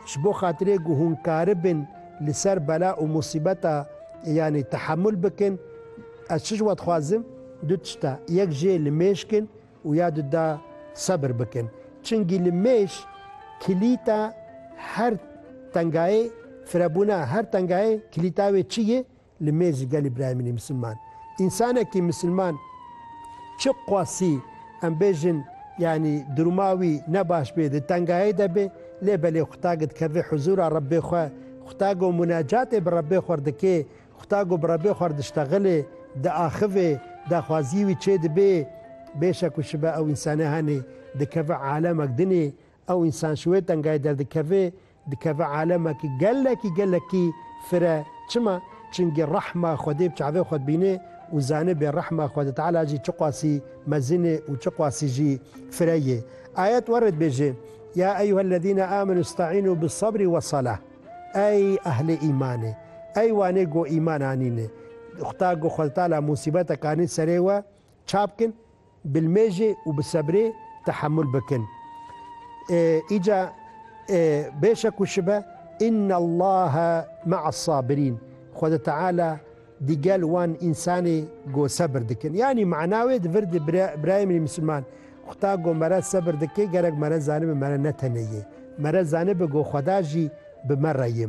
Ji bo xatirê ku hûn karibin li ser bela û musîbeta yanî tehemûl bikin, ez çi ji we dixwazim? Du tişt e, yek jê li mêj kin û ya du da sebir bikin. Çingî li mêj kilîta her tengayê firebûn e. Her tengayê kilîta wê çi ye? li mêrji gelî birayemînî misilman. Însanekî misilman çi qasî em bêjin yanî duruma wî ne baş bê, di tengayê de bê lê belê xuta gi dikeve huzûra Rebbê xwe, xuta go munacatê bi Rebbê xwe dike, xuta go bi Rebbê xwe diştexile, diaxive, daxwaziyê wî çêdibe, bêşek û şibe ew însanê henê dikeve alemek dinê, ew însan ji wê tengayê derdikeve, Dikeve alemekî gelekî gelekî fire. Çima? Çingî rehma Xwedê bi çavê xwe dibînê û zanibê rehma Xwedê Teala jî çiqasî mezin ê û çiqasî jî fire yê. Ayet were dibêje, Ya eyyuhellezîne âmenû îsta'înû bis-sebrî wes-selâh. Ey ehlê îmanê! Ey wanê ku îman anîne! Xwta ku Xwedê Teala musîbetek anî serê we, çabkin. Bilmêjê û bi sebrê tehemul bikin. Îca bêşe ku şibe Innallaha me'as-sabirîn, Xweda Teala di gel wan însanê go sebir dikin. Yanî mana wê di vir de birayê min ê misliman, Xweda go mere sebir dike, gerek mere zanibe mere ne tenê yê. Mere zanibe go Xweda jî bi mere yê.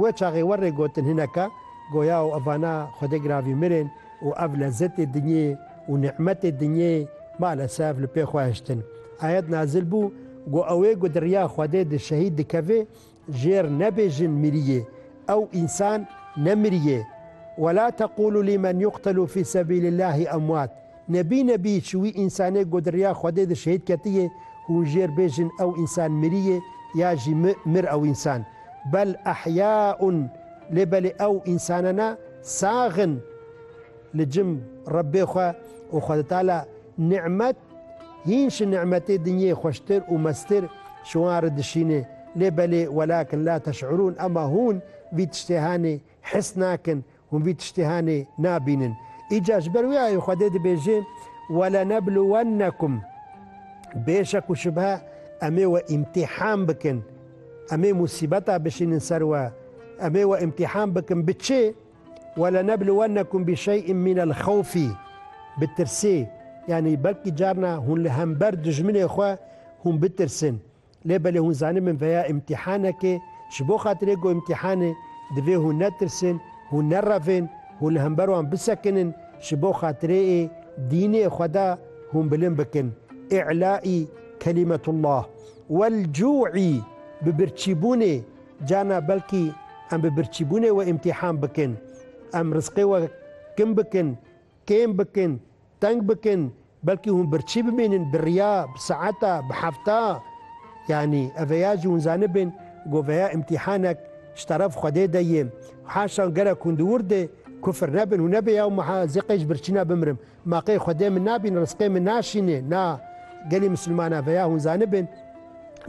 Wê çaxê we rê gotin hineka goya û evana Xwedê giravî mirin û ev lezetê dinyê û nî'metê dinyê malesef li pê xwe hiştin. Ayet nazil bû go ewê ku di riya Xwedê de şehîd dikevê jêr nebêjin miriyê ew însan nemiriyê, Wela teqûlû lîmen yuqtelû fî sebîlîllâhî emwat, Nebî nebî çi wî însanê ku di riya Xwedê de şehîd ketiye, hûn jêr bêjin ew însan mirîye ya jî mi mir ew însan. Bel ehyaun lê belê ew însanana sax in li cim Rebbê xwe û Xwedetala nimet hîn şi nimetê dinyê xweştir û meztir ji wan re dişîne lê belê welakin la teş'urûn ema hûn vî tiştê hanê his nakin Hûn vî tiştê henê nabînin. Îcar ji ber wê ayê Xwedê dibêje, Welenebluwennekum, bê şek û şubhe Em ê we îmtîhan bikin, Em ê musîbeta bişînin ser we, Em ê we îmtîhan bikin bi çi? Welenebluwennekum bişey'in minelxewfî, bi tirsê, yanî belkî carna hûn li hember dijminê xwe hûn bitirsin, Lê belê hûn zanîn min veya îmtîhanekê, ji bo xatirê ku îmtîhanê, divê hûn netirsin, hûn nerevên, hûn li hember wan bisekinin, ji bo xatirê ê dînê Xweda hûn bilind bikin, î'lâ'î kelîmetullah. Wel cû'î, bi birçîbûnê, carna belkî em bi birçîbûnê we îmtîhan bikin, em rizqê we kim bikin, kêm bikin, Teng bikin, belkî hûn birçî bimînin, bi riya, bi saeta, bi hefta. Yanî, eveya jî hûn zanibin ku veya îmtîhanek ji teref Xwedê de yê. Haşan gerek hûn di wir de kufir nebin, hûn nebê yaw ma zê qey ji birçîna bimirim. Ma qey Xwedê min nabîne, rizqê min naşîne. Na, gelê misilmanan veya hûn zanibin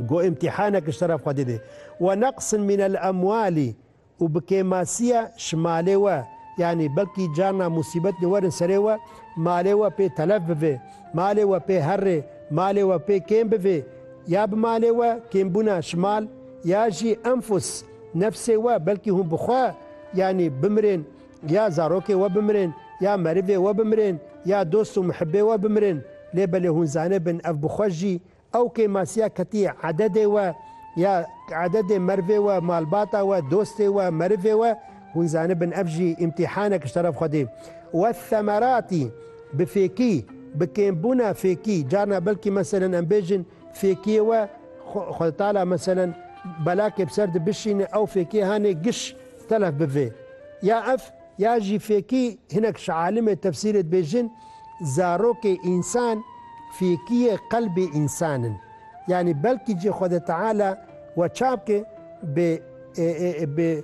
ku îmtîhanek ji teref Xwedê de yê. Weneqsin mînel emwalî Û bi kêmasiya ji malê we, yanî belkî carna musîbet li werin serê we, malê we pê telef bivê, malê we pê herrê, malê we pê kêm bivê, ya bi malê we kêmbûna ji mal, ya jî enfus, nefsê we belkî hûn bi xwe, yanî bimirên, ya zarokê we bimirên, ya merivê we bimirên, ya dost û mihibê we bimirên, lê belê hûn zanibin ev bi xwe jî Ew kêmasiya ketiye ededê we ya ededê merivê we, malbata we, dostê we, merivê we, hûn zanibin ev jî îmtîhanek ji teref Xwedê. We themeratî bi fêkî, bi kêmbûna fêkî, carna belkî meselen em bêjin fêkiyê we Xweditala meselen belakê bi ser de bişîne ew fêkiyê hanê giş telef bive ya ev, Ya jî fêkî hinek ji alimê tefsîrê dibêjin, zarokê însan fêkiyê qelbê însan in. Yanî belkî jî Xwede Teala we çabke bi